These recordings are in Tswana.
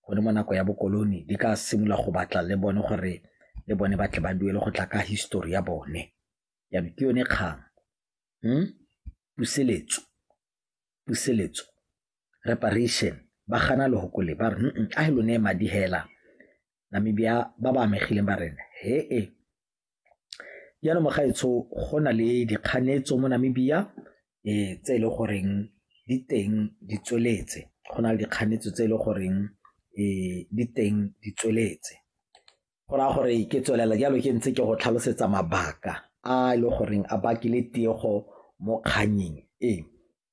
gone mo nako ya bokolone di ka simolola go batla le bone gore le bone ba tle ba duele go tla ka histori ya bone jaanong ke yone kgang hmm? puseletso puseletso reparation ba gana lehoko le ba re a he lone madi hela Namibia ba ba amegileng ba rena he e jaanong mogaetsho go na le dikganetso mo Namibia um tse e le goreng di teng di tsweletse go na le dikganetso tse e le goreng um di teng di tsweletse go raya gore ke tswelela jalo ke ntse ke go tlhalosetsa mabaka a e le goreng a bakile tiego mo kgannyeng e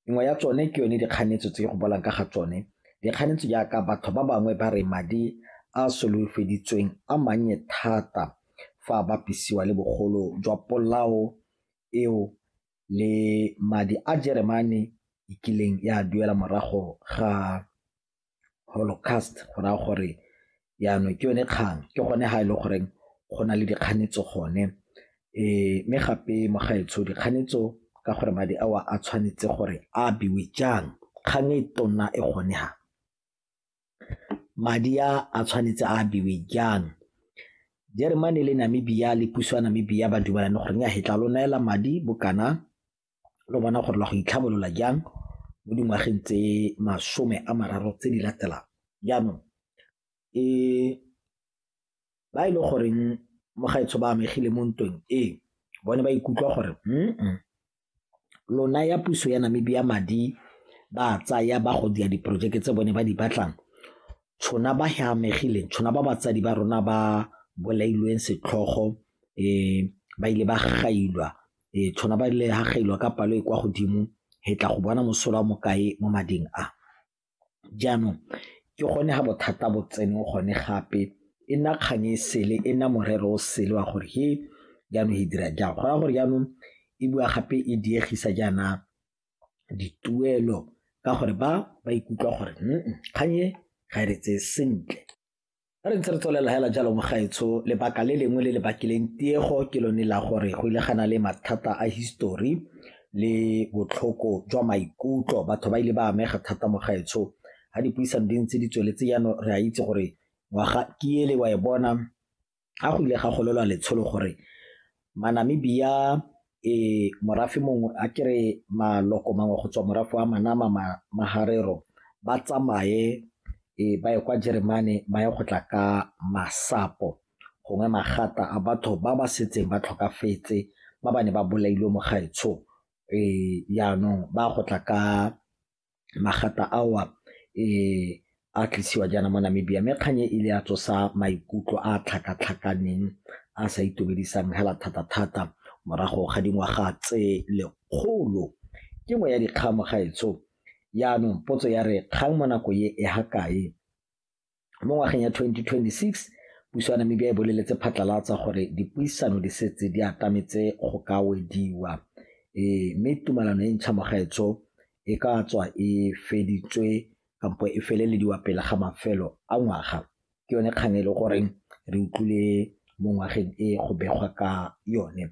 nngwe ya tsone ke yone dikganetso tse go bolang ka ga tsone dikganetso jaaka batho ba bangwe ba re madi a solofeditsweng a mannye thata fa a bapisiwa le bogolo jwa polao eo le madi a jeremane e kileng ya duela morago ga holocaust go raya gore jaanong ke yone kgang ke gone ga e le goreng go na le dikganetso gone um mme gape mo gaetsho dikganetso ka gore madi ao a tshwanetse gore a abiwe jang kgang e tona e gone ha madi a a tshwanetse a abiwe jang jeremane le namibia le puso ya namibia ba dumalane gore nya hetla lo neela madi bokana lo bona gore la go itlhabolola jang mo dingwageng tse masome a mararo tse di latelang jaanong e ba e le goreng mo gaetsho ba amegile mo ntweng e bone ba ikutlwa gore mm lona ya puso ya namibia madi ba tsaya ba go dia diporojeke tse bone ba di batlang tshona ba he amegileng tshona ba batsadi ba rona ba bolailweng setlhogo um ba ile ba gailwa e tshwana ba le hagelwa ka palo e kwa godimo he tla go bona mosola wa mokae mo mading a jaanong ke gone ga bothata bo tsene gone gape e nna kgang e sele e nna morero o sele wa gore he jaanong e dira jang gona gore jaanong e bua gape e diegisa jaana dituelo ka gore ba ba ikutlwa gore kgang e ga e re tseye sentle A re ntse re tswelela hela jalo mogaetsho lebaka le lengwe le le bakileng tiego ke lone la gore go ile gana le mathata a history le botlhoko jwa maikutlo batho ba ile ba amega thata mogaetsho ga dipuisano di ntse di tsweletse jaanong re a itse gore ngwaga ke ele wa e bona ga go ile ga golelwa letsholo gore Manamibia e morafe mongwe a kere maloko mangwe go tswa morafe wa Manama ma, Maharero ba tsamaye e ba ye kwa Jeremane ba ye go tla ka masapo gongwe magata a batho ba ba setseng ba tlhokafetse ba ba ne ba bolailwe mo gaetsho e yaanong ba go tla ka magata ao a a tlisiwa jaana mo Namibia mme kgang e ile ya tsosa maikutlo a a tlhakatlhakaneng a sa itumedisang hela thata-thata morago ga dingwaga tse lekgolo. Ke nngwe ya dikgang mo gaetsho, jaanong potso ya re kgang mo nako e ha kae Mo ngwageng ya 2026, puso ya Namibia e boleletse phatlalatsa gore dipuisano di setse di atametse go ka wediwa e, mme tumalano e ntšha mogaetsho e ka tswa e feditswe kampo e felelediwa pele ga mafelo a ngwaga. Ke yone kgang e le goreng re utlwile mo ngwageng e go begwa ka yone.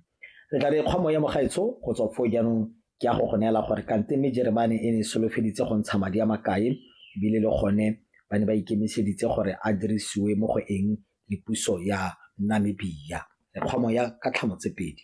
Re tla re kgwa moya mogaetsho go tswa foo jaanong ke ya go go neela gore kante mme Jeremane e ne e solofeditse go ntsha madi a makae ebile le gone ba ne ba ikemiseditse gore a dirisiwe mo go eng le puso ya Namibia. Re kgwa moya ka tlhamo tse pedi.